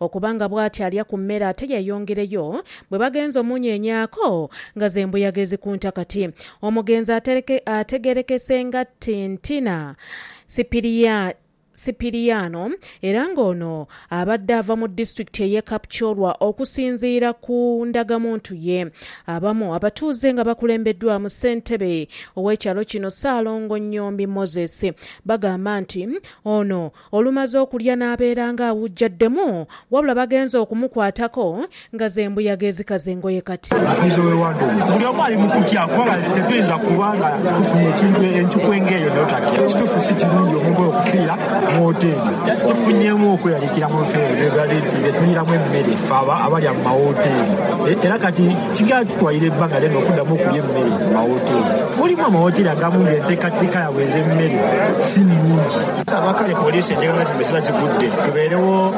Okuba nga bwati alya ku mmere ate yeeyongereyo, bwe bagenze omunyeenyaako nga z'embuyaga ezikunta kati. Omugenzi ategeerekese nga Tintina Sipiriano era ng'ono abadde ava mu disitulikiti ey'e Kapchorwa okusinziira ku ndagamuntu ye. Abamu abatuuze nga bakulembeddwaamu ssentebe ow'ekyalo kino Ssaalongo Nyombi Moses bagamba nti ono Olumaze okulya n'abeera ng'awujjaddemu wabula bagenze okumukwatako nga z'embuyaga ezikaza engoye kati. Buli omu ali mu kutya kuba tetuyinza kuba nga tufunye ekintu enchuku eng'eyo n'otatya. Kituufu si kirungi omuntu oyo okufiira mu wooteeri. Tufunyeemu okweraliikira mu bifo ebyo bye tuliiramu emmere ffe abalya mu mawooteeri era kati kigenda kitwalira ebbanga ddene okuddamu okulya emmere mu mawooteeri. Mulimu amawooteeri agamu ng'enteekateeka yaabwe ez'emmere si nnungi. Abakali poliisi enjega nga zino bwe ziba zigudde tubeerewo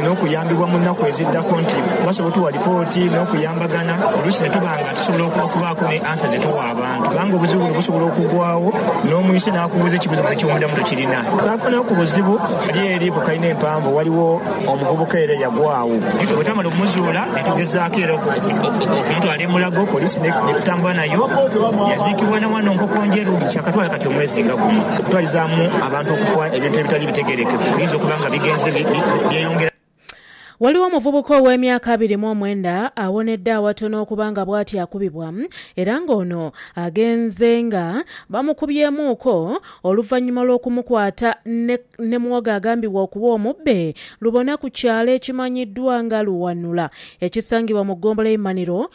n'okuyambibwa mu nnaku eziddako nti basobola otuwa lipooti n'okuyambagana oluusi ne tuba nga tusobola okubaako ni ansa ze tuwa abantu kubanga obuzibu buno busobola okugwawo n'omwise n'akubuuza ekibuuzo nga eky'omundhamu tokirina. Twaafuna ku buzibu ghali eri ku kalina empanvu ghaligho omuvubuka era eyagwaawo. Bwe twamala okumuzuula ne tugezaako era okumutwala e Mulago poliisi n'etutambula nayo yaziikibwa na wano Nkokonjeru. Ghati omwezi nga guno okutwalizaamu abantu okufa ebintu ebitali bitegeerekefu biyinza okuba nga bigenze byeyongera. Ghaligho omuvubuka ow'emyaka abiri mu omwenda awonedde awatono okuba nga bwatyo akubibwa era nga ono agenze nga bamukubyemuuko oluvanyuma lw'okumukwata ne muwogo agambibwa okuba omubbe lubona ku kyalo ekimanyiddwa nga Luwanula ekisangibwa mu ggombolola y'e Maniro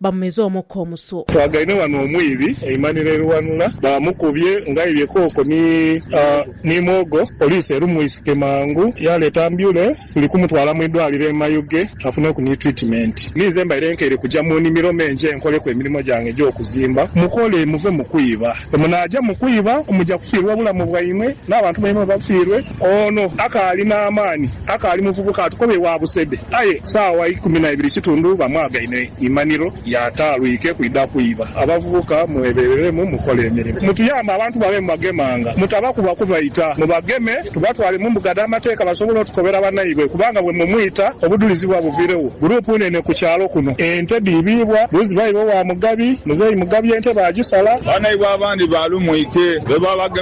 Bamumize omukka omusu. Twagaine wano omwiibi eimaniro eriwanula bamukubye ng'aibye kooko ni mwogo. Poliisi erumwisike mangu yaleeta ambyulensi tuli kumutwala mu idwaaliro e Mayuge afuneku ni twitimeenti. Ninze mbaire nkeire kuja mu nimiro me nje nkoleku emirimo gyange egy'okuzimba. Mukole muve mu kwiba. Bwe munaaja mu kwiba muja kufiirwa obulamu bwaimwe n'abantu baimwe bafiirwe. Ono akaali n'amaani, akaali muvubuka atukoba ewa Busede aye saawa ikumi na ibiri kitundu bamwagaine imaniro y'ataalwike kwidha kwiba. Abavubuka mwebereremu mukole emirimo. Mutuyambe abantu bano be mubagemanga mutabakuba kubaita. Mubageme tubatwale mu mbuga dh'amateeka basobole otukobera banaibwe kubanga bwe mumwita obudhulizi buba buviiregho. Guruupu nene ku kyalo kuno. Ente dhiibiibwa luuzi bayiwa ewa Mugabi. Muzeeyi Mugabi ente baagisala. Banaibwe abandi baalumwike lwe baabagemanga.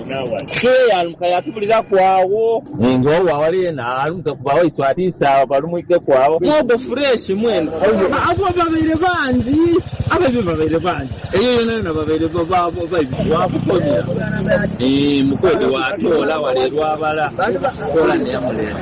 Tiyeyalumuka yatubuliraku agho. Ninga owo awali yena alumuke ku bawaiswa atiise agho balumwikeku agho. Mwogo fureshi mwena. Abo ababaire bangi abaibi babaire bangi. Eyo yonayona babaire baibi wakukomya. Mukwede watoola wale lwabala. Kola neyamuleeta.